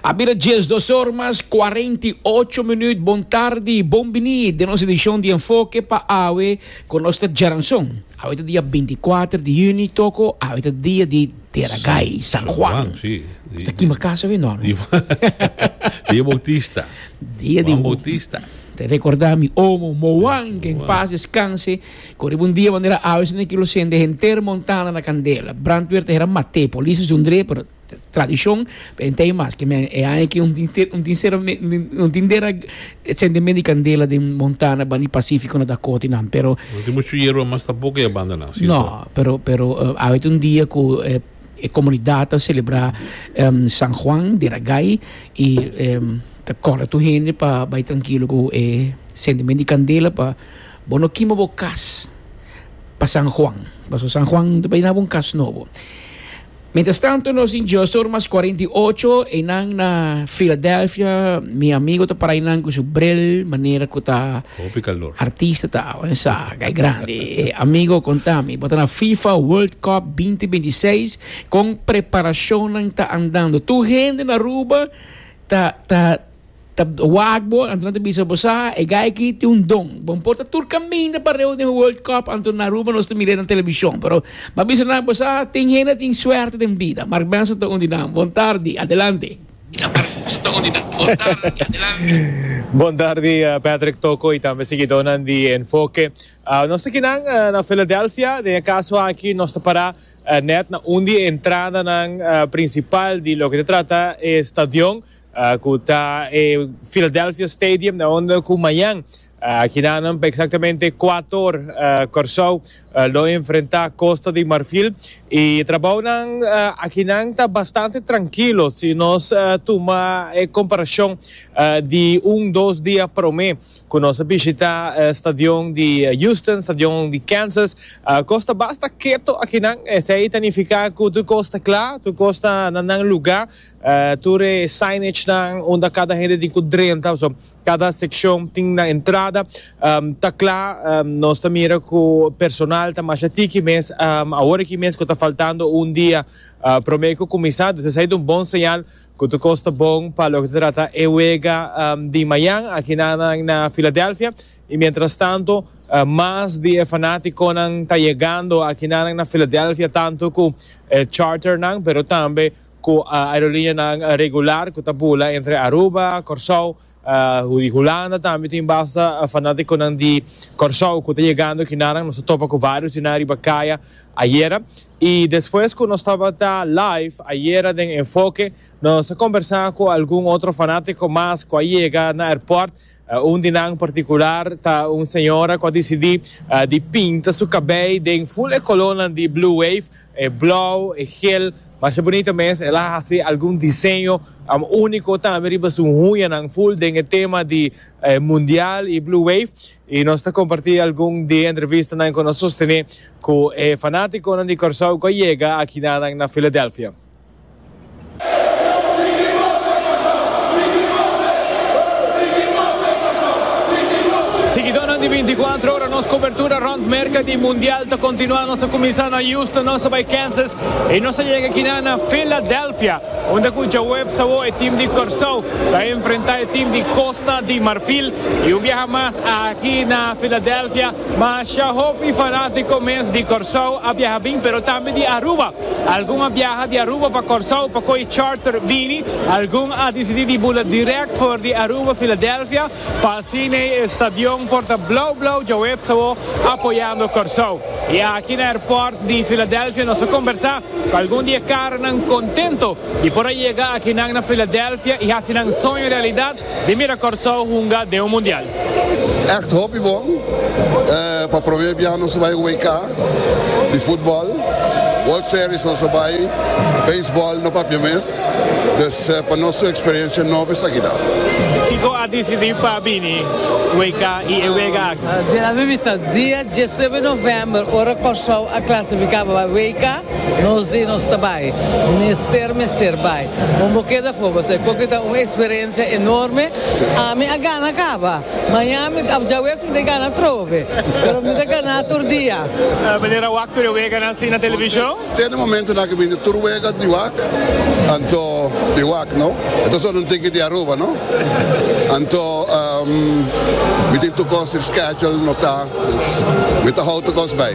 A bira dies dos or mas cuarenta y ocho minuut. Bon tardi, bon bini den nos edicion di Enfoke pa awe cu nos ta djaranson. Awe ta dia binticuater di juni toco awe ta dia di Deragay, San Juan. Si, si. Ta kima casa awe no. Di Dia Bautista. Dia di Juan Bautista. Ta recorda mi omo Moan, que en paz descanse. Ku riba un dia manera awe si niki lo sende henter Montana na kandela. Brandweer ta hera mate, polis a sundre, pero tradishon ta henter ei maske men. E aña aki un tin sera un tin dera sendemen di kandela den Montana bani Pasifiko na Dakota i nan pero No tin muchu yerba mas tampoco e abandoná, si ta? No, pero awe ta un dia ku e komunidat ta selebrá San Juan di Ragay i ta kòrda tur hende pa bai trankilo ku e sendemen di kandela pa Bo no kima bo kas pa San Juan, paso San Juan ta bay nabo un kas nobo. Mientras tanto nos in Geostorm mas cuarenta y ocho eynan na Philadelphia, mi amigo ta para eynan cu su bril manera cu ta Hopi calor. artista ta awe en sa kay grandi. Amigo contami, bo ta na FIFA World Cup binti binti i seis, con preparacionnan ta andando? Tur hende na Aruba ta ta Ta wak bo, Antuna ta bisa bo sa, e guy aki tin un don. Bo no por ta tur caminda pareu den World Cup, Antuna Aruba nos ta mir'e na televishon. Pero m'a bisa nan bo sa, tin hende a tin suerte den bida. Mark Benson ta un di nan. Bon tardi. Adelante. Bon tardi Patrick Toko y tambe siguidónan di Enfoke. Nos ta kinan na Philadelphia. Den e caso aki nos ta para net na un di e entradanan principal di loke ta trata e stadion. Cu ta e Philadelphia Stadium na hondo cu mañan kinanan pa exactamente cuatro or Corsou lo enfrenta Costa di Marfil. Y trabounan akinan ta bastante trankilo si nos tuma e comparacion di un dos dia prome cu nos a bishita stadion di Houston, stadion di Kansas. Cos ta basta keto akinan. Esey ta nifica cu tur cos ta cla, tur cos ta na nan lugar. Tur e signage-nan unda kada hende tin ku drenta, pasobra kada sekshon tin nan entrada. Ta kla nos ta mira ku personal ta masha tiki mes. Awor aki mes ku ta faltando un dia promé ku kuminsá, dus esei ta un bon señal ku tur kos ta bon pa loke ta trata e wega di mañan akinan na Filadelfia. I miéntras tantu mas di e fanátikonan ta yegando akinan na Filadelfia, tantu ku e charternan pero tambe cu aerolinianan regular cu ta bula entre Aruba, Corsou y di Hulanda. Tambe tin basta fanaticonan di Corsou cu ta yegando aki naran. Nos a topa cu varios di nan riba caya ayera. Y despues cu nos tabata live ayera den Enfoke nos a conbersa cu algun otro fanatico mas cu a yega na airport. Un di nan partikular ta un señora ku a disidí di pinta su kabei den ful e kolónan di Blue Wave, e blou, e gel. Masha bunito mes, el a hasi algun diseño úniko tambe riba su hunyanan ful den e tema di Mundial i Blue Wave. I nos ta kompartí algun di e entrevistanan ku nos sostené ku e fanátikonan di Kòrsou ku a yega akinan na Filadelfia. Siguidónan di Bintikuatro Ora, Nos kobertura rònt Merka di Mundial ta kontinuá. Nos a kuminsá na Houston, nos a bai Kansas i nos a yega kina na Filadelfia, unda ku djaweps awor e tim di Kòrsou ta enfrentá e tim di Kosta di Marfil. I un biaha mas aki na Filadelfia. Mashá hopi fanátiko mes di Kòrsou a biaha bin, pero tambe di Aruba. Algun a biaha di Aruba pa Kòrsou pa kohe charter bini. Algun a disidí di bula dirèkt for di Aruba, Filadelfia, pa asina e estadion por ta blou blou djaweps awó apoyando Kòrsou. I aki na airport di Filadelfia nos a kombersá ku algun di e karanan kontento di por a yega akinan na Filadelfia i hasi nan soño realidat, Di mira Kòrsou hunga den un mundial. Ègt hopi bon. Pa promé biaha nos a bai WK di futbòl. World Series nos a bai. Beisbòl no papia mes. Pues pa nos tur eksperiensia nobo esaki ta. Kiko a disidí pa bini WK i e wega aki? Den a mimisa dia diesnuebe novèmber, ora Kòrsou a klasifiká pa bai WK, nos di nos ta bai. Mester mester bai. Bo no keda for bo sa koke ta un eksperensia enorme, ami a gana kaba, maña mi ta dja wes mi ta gana trofe, pero mi ta gana tur dia. Manera a wak tur e weganan así na televishon? Te na momentunan ke bini tur wega di wak, anto mi wak no. E ta solo un tiki di Aruba no. Anto mi tin tur kos schedule no ta, mi ta hou tur kos bai.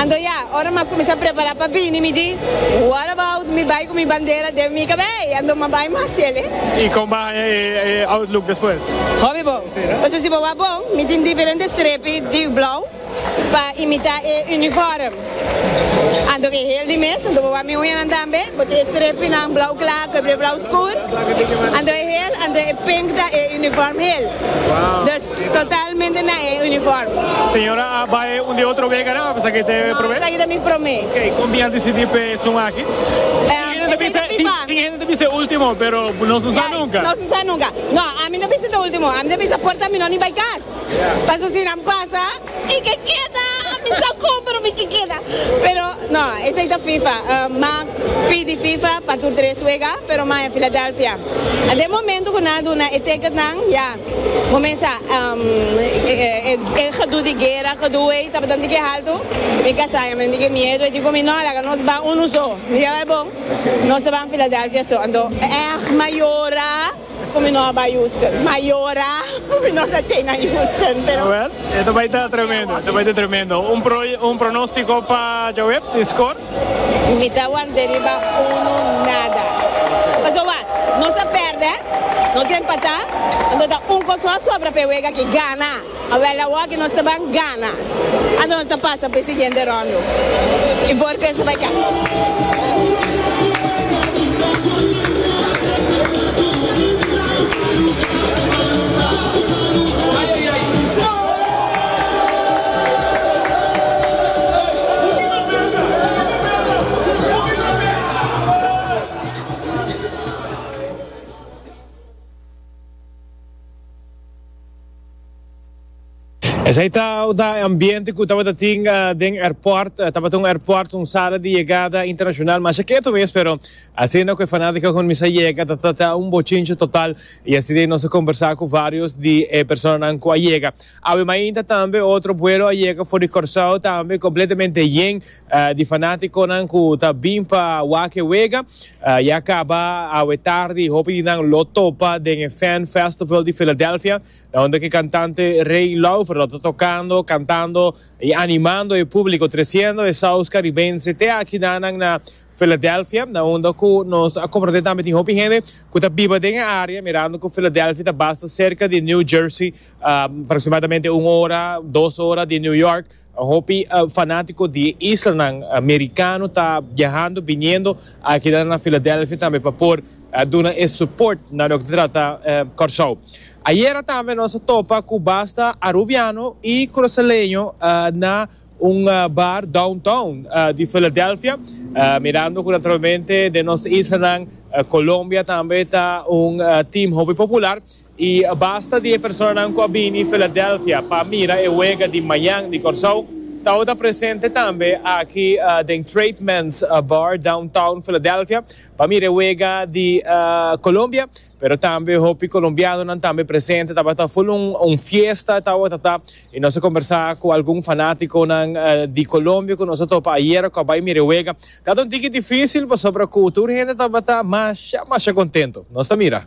Anto ya, ora m'a kuminsá prepará pa bini, mi di, What about mi bai ku mi bandera den mi kabei? Anto m'a bai mas chele. I kon bo haña e outlook despues? Hopi bon. Pasobra si bo wak bon, mi tin diferente strepi di blou pa imitá e unifòrm. Anto ke hel di mes, anto bo wak mi uñanan tambe, bo tin e strepinan blou kla ku e blou skur. Anto e hel, anto e penta e unifòrm hel. Dus Totalmente na e uniform. Señora a bay un di otro wega nan a pensa ke te prome? No, esaki ta mi prome. Ok, kon bin a disidi pe esun aki? Tin hende ta bisa, tin hende ta bisa ultimo pero nos no sa nunka. Nos no sa nunka. No, ami no ta bisa ta ultimo, ami ta bisa por ta mino ni bay kas. Paso si nan pasa e ke keda, ami sa kon pero mi ke keda. Pero no, esaki ta fifa. M'a pidi fifa pa tur tres wega pero m'a e Philadelphia. Den momento ku nan a duna e ticket nan, ya. Comensa e gedoe di guera, gedoe ey tabata di ke haltu, mi casa ya men di ke miedo, ey di cu mi no, laga nos ban uno so, mi ya bay bon, nos a ban Philadelphia so, anto ech ma yora cu mi no a bay Houston, ma yora cu mi no ta tey na Houston, pero. Jawel, e ta bay ta tremendo, e ta bay ta tremendo. Un pronostico pa Jawebs di score? Mi ta wante riba unu nada. Paso wak, nos a perde, nos a empata, anto ta un kos ku a sobra pa e wega aki, gana. Awel awoki nos ta ban gana anto nos ta pasa pa e siguiente rondo i for ku eso bai kaba. Esei tabata e ambiente cu tabata tin den airport. Tabata un airport, un sala di yegada internacional masha keto mes, pero asina cu e fanatico cuminsa yega ta trata un bochinche total y asina nos a conversa cu varios di e personanan cu a yega. Awe mainta tambe otro buelo a yega for di Corsou tambe completamente yen di fanaticonan cu ta bin pa wak e wega. Ya caba awe tardi hopi di nan lo topa den e Fan Festival di Philadelphia unda cu e cantante Rey Laufer lo ta tocando, cantando y animando e publico treciendo e saus caribense te aki na nan na Filadelfia, na unda ku nos a komprondé tambe tin hopi hende ku ta biba den e área, mirando ku Filadelfia ta basta serka di New Jersey, aproksimadamente un ora, dos ora di New York. Hopi fanátiko di e islanan merikano ta biahando, biniendo aki nan na Filadelfia tambe pa por duna e suport na loke ta trata Kòrsou. Ayera tambe nos a topa ku basta arubiano i krusaleño na. Un bar downtown di Philadelphia, mirando cu naturalmente den nos islanan Colombia tambe ta un team hopi popular y basta di e personanan cu a bini Philadelphia pa mira e wega di mañan di Corsow tawata ta presente tambe aki den Trademan's Bar downtown Philadelphia pa mira e wega di Colombia. Pero tambe hopi colombianonan tambe presente tabata full un un fiesta tawatata y nos a conversa cu algun fanaticonan di Colombia cu nos a topa ayer cu a bay mira e wega tabata un tiki dificil pasobra cu tur hende tabata masha masha contento nos ta mira.